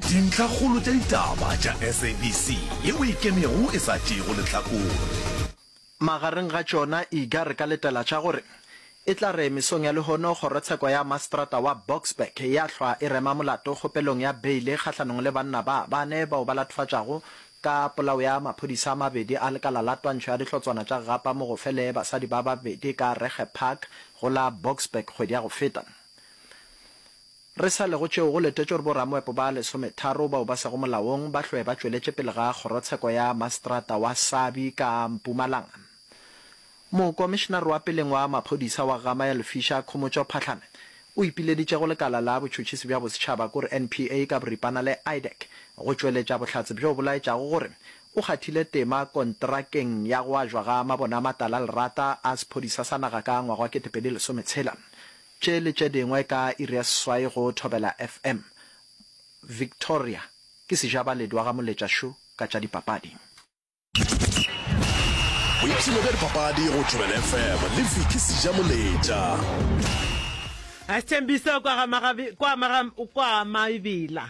Dintlhakgolo tša ditaba tša SABC ye o e kenego e sa tšeego lehlakore. Magareng ga tšona iga re ka letela tša gore e tla re mesong ya lehono kgorotsheko ya maseterata wa Boksburg ya hlwa e rema molato kgopelong ya beile kgahlanong le banna ba bane bao ba latofatšago ka polao ya maphodisa a mabedi a lekala la twantšho ya dihlotswana tša gapa mogofele basadi ba babedi ka Regge Park go la Boksburg kgwedi ya go feta. Re sa le go tšeo, go letetšwe gore boramoepo ba lesometharo bao ba sego molaong ba hlwe ba tšweletše pele ga kgorotsheko ya maseterata wa Sabi ka Mpumalanga. Mokomišenare wa peleng wa maphodisa wa Gama ya Lefisha, Khomotšo Phahlame, o ipileditše go lekala la botšhotšhisi bja bosetšhaba, kore NPA ka boripana le IDAC, go tšweletša bohlatse bjo bo laetšago gore o kgathile tema kontrakeng ya go ajwa ga mabone a matala a lerata a sephodisa sa naga ka ngwaga wa kete pedi lesometshela. Tše le tše dingwe ka iri ya seswai go Thobela FM. Victoria ke sejabaledu wa ga Moletša Šo ka tša dipapadi. Boipshino bja dipapadi go Thobela FM le Vicky Sijamoletša. Sithembiso kwa Maibila.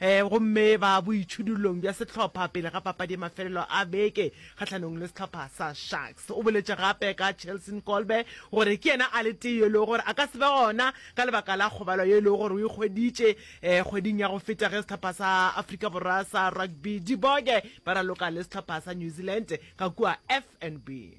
gomme ba boitšhidullong bja sehlopha pele ga papadi ya mafelelo a beke kgahlanong le sehlopha sa Sharks. O boletše gape ka Chelson Kolbe gore ke yena a le tee yo e lego gore a ka se be gona ka lebaka la kgobalo yo e lego gore o e hweditše kgweding ya go feta ge sehlopha sa Afrika Borwa sa Rugby Diboge ba raloka le sehlopha sa New Zealand ka kua FNB.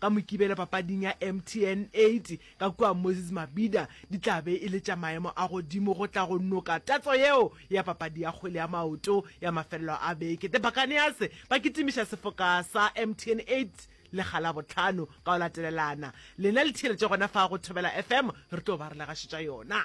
Ka Mokibelo papading ya MTN 8 ka kua Moses Mabhida di tla be e le tša maemo a godimo go tla go noka tatso yeo ya papadi ya kgwele ya maoto ya mafelelo a beke. The Buccaneers ba kitimiša sefoka sa MTN 8 le ga Labohlano ka go latelelana. Lena le theeletše gona fa go Thobela FM, re tlo ba re le gašetša yona.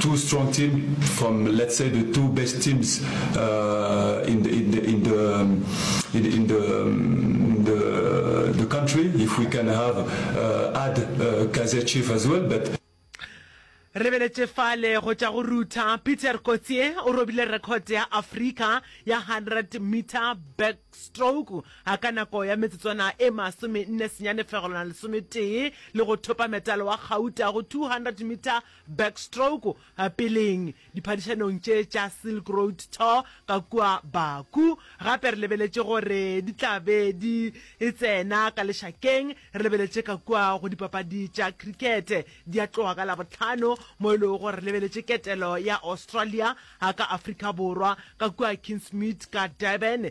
Two strong team from let's say the two best teams uh, in the in the in the um, in, in the um, the the country. If we can have uh, add uh, Kaiser Chief as well, but. Re beletše fale go tša go rutha Peter Kotsie o robile record ya Afrika ya 100 meter backstroke a ka nako ya metsotswana e masome nne senyane fegelwana lesometee le go thopa metalo wa gauta go 200 meter Backstroke, peleng, diphadišanong tše tša Silk Road Tour ka kua Baku. Gape re lebeletše gore di tla be di tsena ka lešakeng. Re lebeletše ka kua go dipapadi tša khirikete. Di a tloga ka Labohlano, mo e lego gore re lebeletše ketelo ya Australia ka Afrika Borwa, ka kua Kingsmead ka Durban.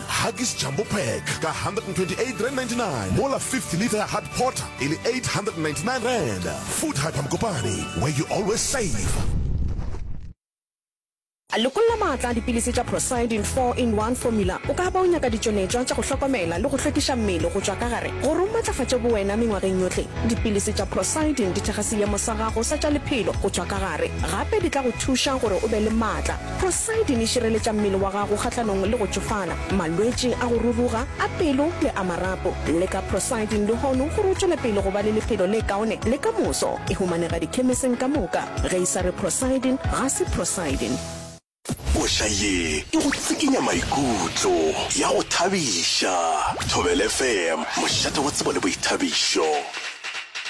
Huggies Jumbo Pack ka R128.99 mola 50 litre ya Hard Porter e le R899. Food Hyper Mokopane, where you always save. Lekolla maatla a dipilisi tša Procyldin 4 in 1 Formula. O ka ba o nyaka ditšonetšwa tša go hlokomela le go hlwekiša mmele go tšwa ka gare. Gore o matlafatše bowena mengwageng yohle, dipilisi tša Procyldin di thekga seemo sa gago sa tša lephelo go tšwa ka gare. Gape di tla go thuša gore o be le maatla. Poseidon e šireletša mmele wa gago kgahlanong le go tšofala, malwetši a go ruruga, a pelo le a marapo. Le ka Proseidon lehono gore o tšwele pele go ba le lephelo le kaone le ka moso. E humanega dikhemeseng ka moka. Ge e sa re Proseidon, ga se Proseidon. Koša ye e go tsikinya maikutlo, ya go thabiša. Thobela FM, mošate wa tsebo le boithabišo.